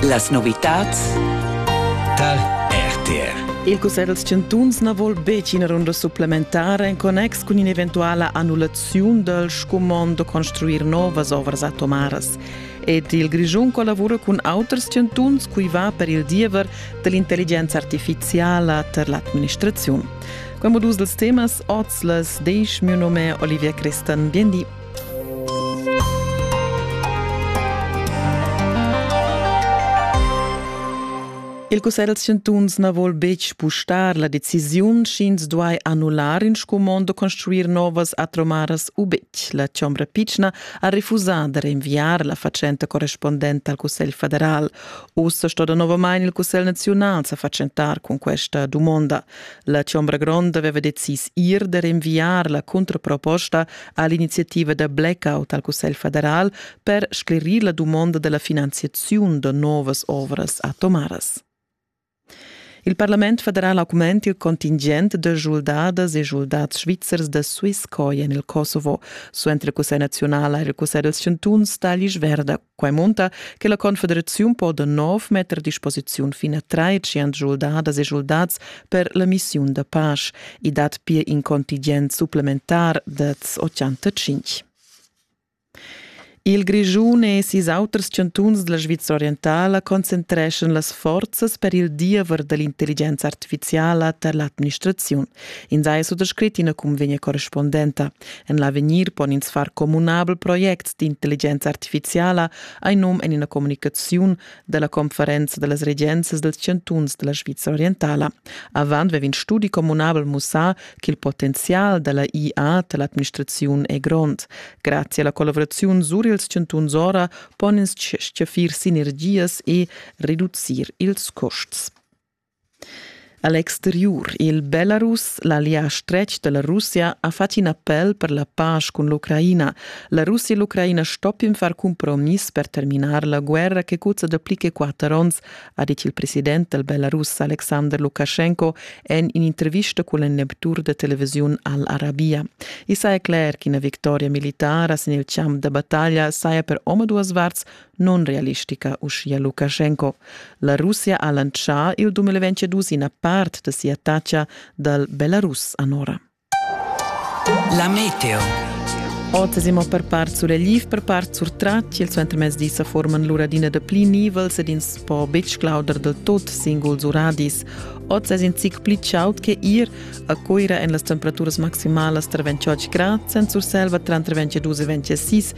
Las novitads tar RTR. Il Cussegl dels chantuns na vuol betg ina runda supplementara en connex cun in'eventuala annullaziun dal scumond da construir novas ovras atomaras. Ed il Grischun collavura cun auters chantuns cui va per il diever dell'intelligenza artificiala per l'administraziun. Quei modus dels temas oz las 10 mio nome Olivier Christen. Bien di. Il cussegl da chantuns na vol betg spustar la decisiun sch'ins duai annullar in scumond u construir novas atromaras u betg. La Chombra Pitschna ha refusà da rinviar la fatschenta correspondenta al Cussegl federal. Ussa sto danovamain il Cussegl naziunal sa fatschentar cun questa dumonda. La Chombra Gronda aveva decis ir da rinviar la cuntraproposta ha l'iniziativa da blackout al Cussegl federal per sclerir la dumonda della finanziaziun da novas ovras atomaras. Il Parlament federal augment il contingent de schuldadas e schuldats svizzers da Swisscoin en il Kosovo, suenter il Cussegl nazional e il Cussegl dels chantuns tagli verda Quai munta che la Confederaziun po da nov metter a disposiziun fin a trais schuldadas e schuldats per la missiun da pace. I dat pir in contingent supplementar da 85. Il Grischun e sis auters chantuns della Svizzera orientala concentreschan las forzas per il diever dell'intelligenza artificiala per l'administrazione. In sai suttascrit ina convegna correspondenta. En l'avegnir pon ins far communabel projects d'intelligenza artificiala hai num en ina communicaziun dalla conferenza dallas regenzas dels chantuns della Svizra orientala. Avant vevin studi communabel mussà che il potenzial della IA dell'administraziun è grond. Grazie alla collaborazione sur ils chantuns ora pon ins stgaffir sinergias e reducir ils costs. A l'exteriur il Belarus, l'allià stretg da la Russia, ha fatg in appel per la pasch cun l'Ucraina. La Russia e l'Ucraina stoppin far cumpromiss per terminar la guerra che cuzza dapli che quatter onns, ha dit il president dal Belarus Alexander Lukaschenko en in'intervista cun il Neptur da televisiun Al-Arabia. I saja cler ch'ina victoria militara sin il champ da battaglia saja per omaduas varts nunrealistica, uschia Lukaschenko. La Russia ha lantschà il 2022 ina part da sia taxa dal Belarus anora. La meteo. Ottesimo per part suregliv, per part surtratg, il suentermezdi sa forman l'uradina da pli nivels ed ins po betg clauder del tot singuls uradis. Oz es in zic pli chaud che ir a Coira en las temperaturas maximalas tra 28 grad, sen Surselva tranter 22 e 26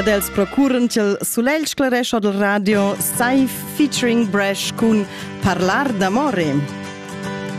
Ed els procuran ch'el sulegl sclarescha dal radio sai featuring Bresh cun Parlar d'amore.